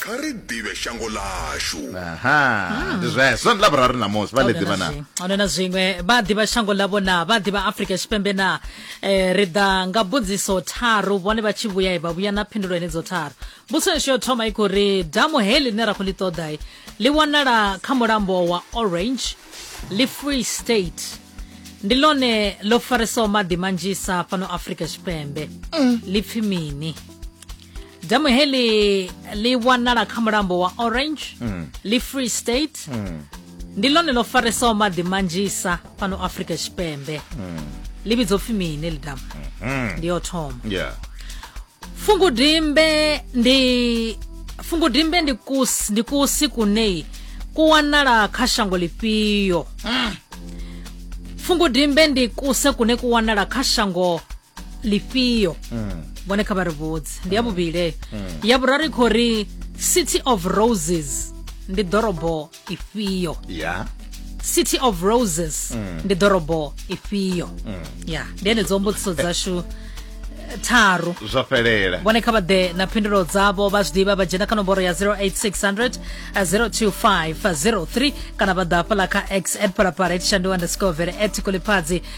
Kha ri ḓivhe shango ḽashu. Aha, ndi zwezwo. Ndi Ḽavhuraru ṋamusi, vha ḽi ḓivha na? A huna na zwiṅwe. Vha ḓivha shango ḽavho na? Vha ḓivha Afrika Tshipembe na? Eh, ri ḓa nga mbudziso tharu, vhone vha tshi vhuya vha vhuya na phindulo henedzo tharu. Mbudziso yashu yo thoma i khou ri damu heḽi ḽine ra khou ḽi ṱoḓa ḽi wanala kha mulambo wa Orange, ḽi Free State. Ndi ḽone ḽo faresaho maḓi manzhisa fhano Afrika Tshipembe. Ḽi pfi mini? damu heli li wanala kha mulambo wa orange mm. li free state mm. ndi lone lo faresaho maḓi manzhisa fhano afrika tshipembe mm. li vhidzo pfi mini li damu mm -hmm. ndi yo thoma yeah. fungudimbe ndi fungudimbe ndi kusi ndi kusi kuneyi ku wanala kha shango lifhio mm. fungudimbe ndi kuse kune ku wanala kha shango lifhio vhone kha vha ri vhudze ndi ya vhuvhili ya vhuraru i khou ri city of roses ndi ḓorobo ifhio ya city of roses ndi ḓorobo ifhio ya ndi henedzo mbudziso dzashu eh, tharu zwa fhelela vhone kha vha ḓe na phindulo dzavho vha zwiḓivha vha dzhena kha nomboro ya 08600 02503 kana vha ḓa hafhaḽa kha x at palapala at shandu underscore vele at kulipfadzi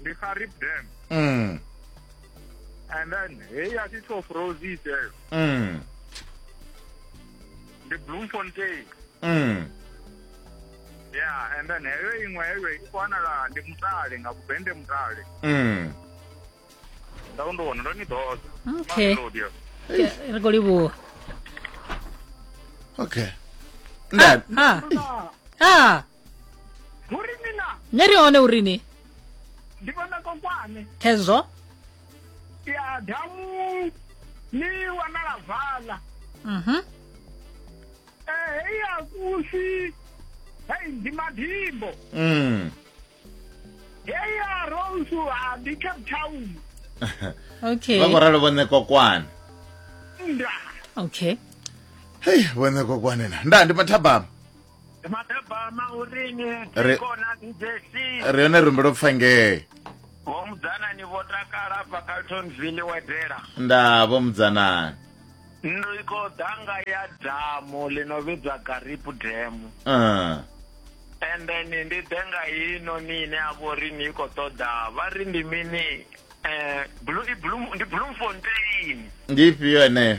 ndi kha rip dam mm. and then heyi a thi top roses eyo mm. ndi bloemfontein mm. yeah and then heyo iṅwe heyo i khou wanala ndi mutale nga kubende mutale mm. nda u ndi wona ndo ni ḓoza okay ri khou livhuwa okay nda ah. ah. ah. hu ri mina ni ri hone uri ni ndi vhona kokwane khezwo ya damu ni wanala vala mhm eh hei ya kusi hei ndi madimbo mm hei ya rosu ha ndi cape town okay vha khou ralo vhone kokwana nda okay hei vhone kokwane na nda ndi mathabama madabama urini Re- tikona ndesi ri yone rumbe lwo pfa ngee vho mudzanani vho takala bva caltonville wedela nda vho mudzanani ndo i khou ḓa nga ya damu ḽi no vhidzwa garip damu Ah, and then ndi ḓe nga ino ni ine a vho ri ni i khou ṱoḓa vha ri ndi mini um ndi Bloemfontein ndi ifhio eneyo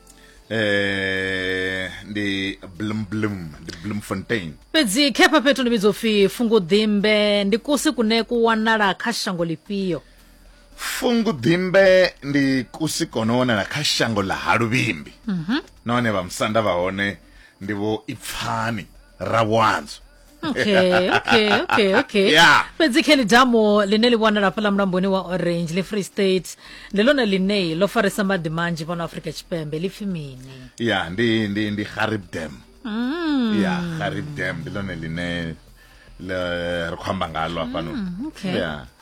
eh ndi blum blum ndi bloemfontein fhedzi khepha fhethu ndi vhidzo upfi funguḓimbe ndi kusi kune ku wanala kha shango lifhio funguḓimbe ndi kusi kono wanala kha shango ḽa ha luvhimbi nahone vhamusanda vha hone ndi vho ipfani rabwanzo okay okay okay okay Yeah. fhedzi kelly damo line li wanala fhala mulamboni wa orange le free state ndi lone line lo farisa maḓi manzhi fhano afrika tshipembe li pfi mini ya ndi ndi ndi harib dam Mm. ya harib dam ndi lone line le- ri khou amba ngalo hafhanoni Mm, okay. ya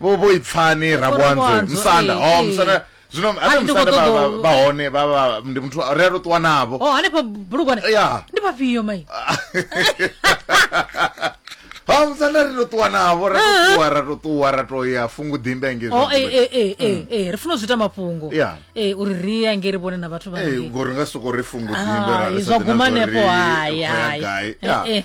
vho vho ipfani rabwanzwe musanda o oh, musanda eh, eh. zwino ane musanda vha hone vha vha ndi muthu ri a to ṱuwa navho o oh, hanefha bulugwane ya ndi vhafhio mai ha musanda ri to ṱuwa navho ra to ṱuwa ra to ṱuwa ra to ya fungu ḓimbe nge zwo oh, eh, eh, eh, mm. eh, ri funa zwi ita mafhungo yeah. eh, uri ri ya nge ri vhone na vhathu vha eh, ngori nga soko ri fungu ḓimbe ra zwa guma nepo hayi hayi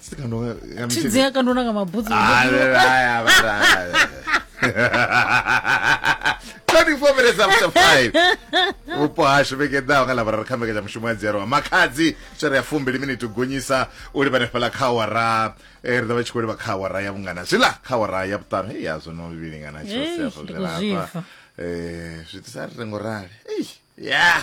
Sikandoka ya mishika. chidzi yakandoona nga mabhutsu Ah, la, la, la, la, la. 24 minutes after 5 vhupo hashu vhege ḓaho nga lavhuraru kha mbekanyamushumo mushumo ya dzerwa makhadzi tshere ya fumbili miniti u gonyisa u livha nefhala kha awara eh, ri ḓo vha tshi khou livha kha awara ya vhungana zwiḽa kha awara ya vhuṱanu hei ya zwono vhilingana Eish, ndi khou zwifha. um zwi itisa ri rengo rali Eish, ya